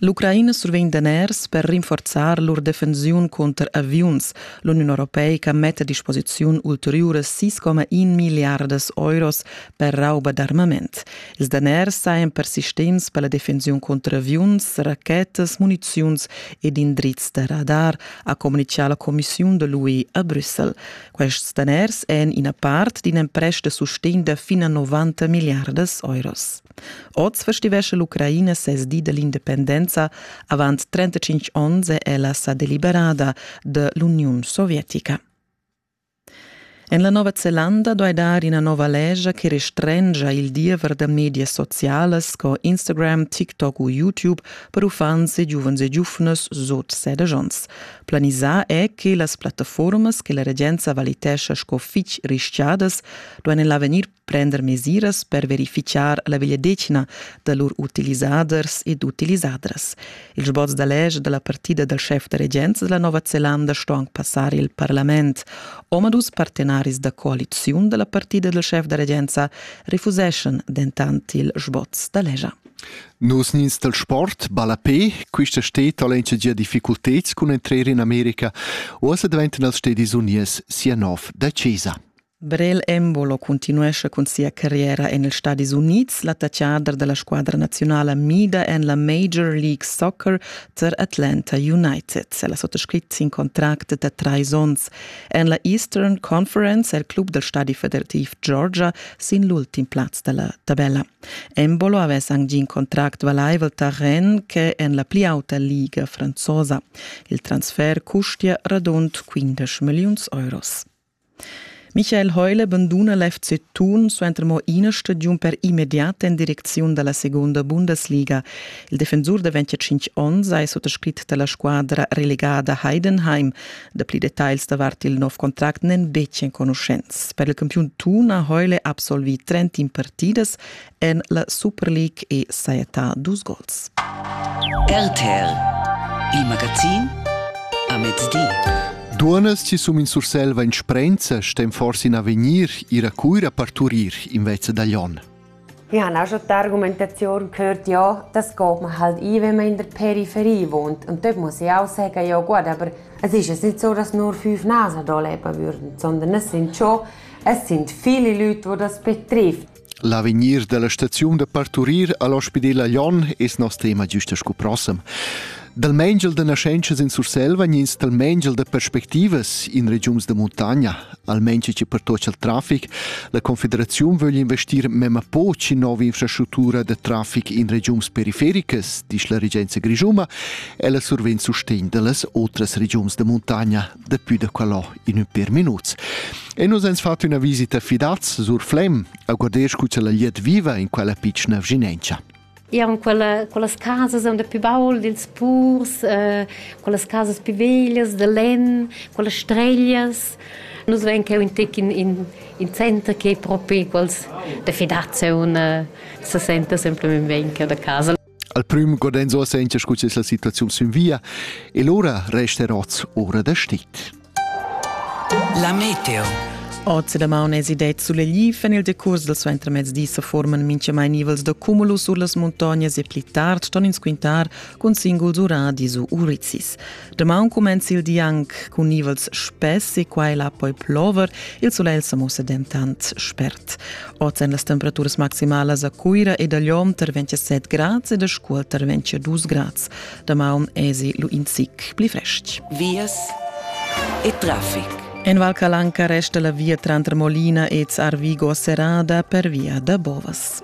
L'Ucraina survegn daners per rinforzar lur defensiun cunter aviuns. L'Uniun europeica metta a disposiziun ulteriuras 6,1 milliardas euros per rauba d'armament. Ils daners sajan persistents per la defensiun cunter aviuns, rachetas, muniziuns ed indrizs da radar, ha communitgà la commissiun da l'UE a Brüssel. Quests daners èn ina part d'in emprest da sustegn da fin a 90 milliardas euros. Oz festivescha l'Ucraina ses di dell'independenza. Avant 35 onns è ella sa deliberada da l'Uniun sovietica. En la Nova Zelanda duai dar ina nova legia che restrengia il diever da medias socialas sco Instagram, TikTok u YouTube per uffants e giuvens e giuvnas sut sedici onns. Planisà è che las plattaformas che la regenza valitescha sco fitg rischiadas duain en l'avegnir prender mesiras per verificar la vegliadetgna da lur utilisaders ed utilisadras. Il sboz da lege dalla partida dal chef da regenza della Nova Zelanda sto anche passare il parlament. Omadus partenaris da coaliziun della partida del chef da regenza refuseschan dentant il sboz da legia. Nos nins del sport, ballapé, quista steet allencia gia difficultets cun entrer in America, osa daventan als stedis unies sia nov da Cesa. Brel Embolo cuntinuescha cun sia carriera en ils Stadis Unids, l'attachader da la squadra naziunala mida en la Major League Soccer tar Atlanta United. El ha suttascrit sin contract da trais onns. En la Eastern Conference è il club dal stadi federativ Georgia sin l'ultim plaz da la tabella. Embolo avess anc gì in contract valaivel tar Rennes che en la pli auta liga franzosa. Il transfer custia radund 15 milliuns euros. Michael Heule banduna l'FC Thun suenter mo ina stagiun per immediat en direcziun dalla secunda Bundesliga. Il defensur da 25 onns ei suttascrit dalla squadra relegada Heidenheim. Dapli detagls davart il nov contract n'en betg enconuschents. Per il campiun Thun ha Heule absolvi 30 partidas en la Superleague e sajetà dus gols. RTL, il magazin a mezdi. Duonas chi sum in Sursel va in sprenza stem forsi in avegnir ir a Cuira parturir invece da Lyon. Ich habe auch schon die Argumentation gehört, ja, das geht man halt ein, wenn man in der Peripherie wohnt. Und dort muss ich auch sagen, ja gut, aber es ist nicht so, dass nur fünf Nasen hier leben würden, sondern es sind schon es sind viele Leute, die das betrifft. L'avegnir dalla staziun da parturir all'ospidel a Lyon es nos tema giusta sco prossem. Dal mengel da naschentschas in Surselva ins dal mengel da perspectivas in regiuns da montagna, almain che pertocca il traffic, la Confederazione vogl investir memma poc in nova infrastruttura da traffic in regiuns perifericas, dice la regenza grigiuma, e la survegn sustegn dallas otras regiuns da montagna, Daplü da quellò in ün per minuts. E nus ens fat üna visita fidaz sur Flem, a godesch cu la liet viva in quella pitschna vginencha. Eran quella, quellas casas am da più baul dils purs, eh, quellas casas più veglias da len, quelle streglias. Nus vein cheu in tec in, in, in center che propi quels da fidazia un eh, se senta semplicemente bene da casa. Al prüm godenzo a sentia scu es la situaziun sün via e lura resta oz ora da stit. La meteo Oz da maun es idet sulegl en il decurs del suenter mezdi se forman minchamai nivels da cumulus sur las montagnas e pli tard ston ins quintar cun singuls uradi su Urizis. Damaun cumenza il di anc cun nivels spess e quai la poi plover. Il sulegl sa mussa dentant spert. Oz èn las temperaturas maximalas a Cuira ed a Lyon tar 27 grads ed a Scuol tar 22 grads. Damaun èsi lu in zic pli frestg. Vias e traffic. En Val Calanca resta la via tranter Molina e Zarvigo serrada per via da Bovas.